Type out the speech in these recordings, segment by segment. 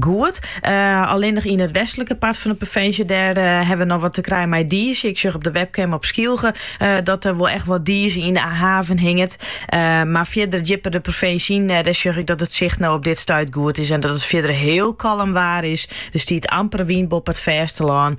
Goed, allinnich yn it westlike part fan de provinsje, dêr ha we noch wat te krijen mei dize. Ik sjoch op de webcam op Skylge dat der wol echt wat dize yn de haven hinget. Mar fierder djipper de provinsje yn, dêr sjoch ik dat it sicht no op dit stuit goed is en dat it fierder hiel kalm waar is. Der stiet amper wyn boppe it fêstelân.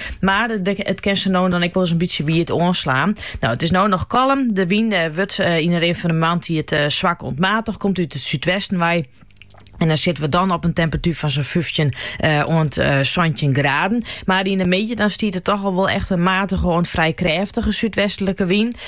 Mar it kin sa no en dan ek wol ris in bytsje wiet oanslaan. No, it is no noch kalm. De wyn eh, wurdt eh, yn de rin fan de moarntiid eh, swak oant matich, komt út it súdwesten wei. En dan sitte we dan op in temperatuer fan sa'n fyftjin uh, oant, uh, santjin graden. Mar yn de middei dan stiet der toch al wol echt in matige oant frij krêftige súdwestlike wyn.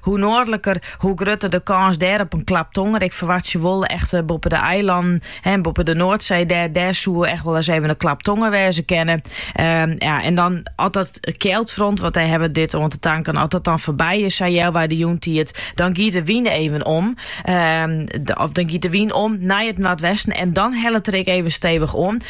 hoe noardliker, hoe grutter de kâns dêr op in klap tonger. Ik ferwachtsje wol echt eh, boppe de eilannen en boppe de Noordzee, dêr, dêr soe echt wolris even in klap tonger wêze kinne. Ehm, ja, en dan as dat kjeldfront, want dêr ha we dit oan te tankjen, as dat dan foarby is, sa healwei de jûntiid, dan giet de wyn even om. Ehm, of dan giet de wyn om nei it noardwesten en dan hellet er ek even stevich oan.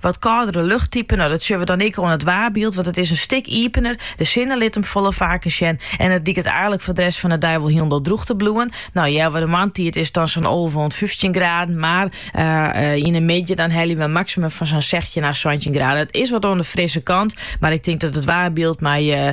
Wat kâldere luchttypen, no dat sjogge we dan ek oan it waarbyld, want it is in stik iepener. De sinne lit him folle faker sjen en it liket eigenlik foar de rest fan de dei wol hielendal drûch te bliuwen. No, healwei de moarntiid is it dan sa'n alve oant fyftjin graden, mar yn de middei dan helje we in maksimum fan sa'n sechstjin à santjin graden. It is wat oan de frisse kant, mar ik tink dat it waarbyld mei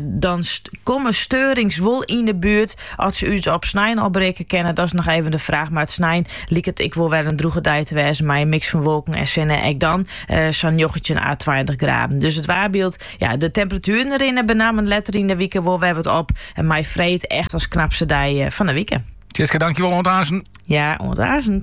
Dan komme steurings wol yn de buert. Oft se ús op snein al berikke kinne, dat is noch even de fraach. Mar de snein liket ek wol wer in drûge dei te wêzen mei in miks fan wolken en sinne. Ek dan sa'n njoggentjin à tweintich graden. Dus it waarbyld, ja, de temperatueren rinne benammen letter yn de wike wol wer wat op. En mei freed echt as knapste dei fan de wike. Sietske, dankjewol. Oant aansen. Ja, oant aansen.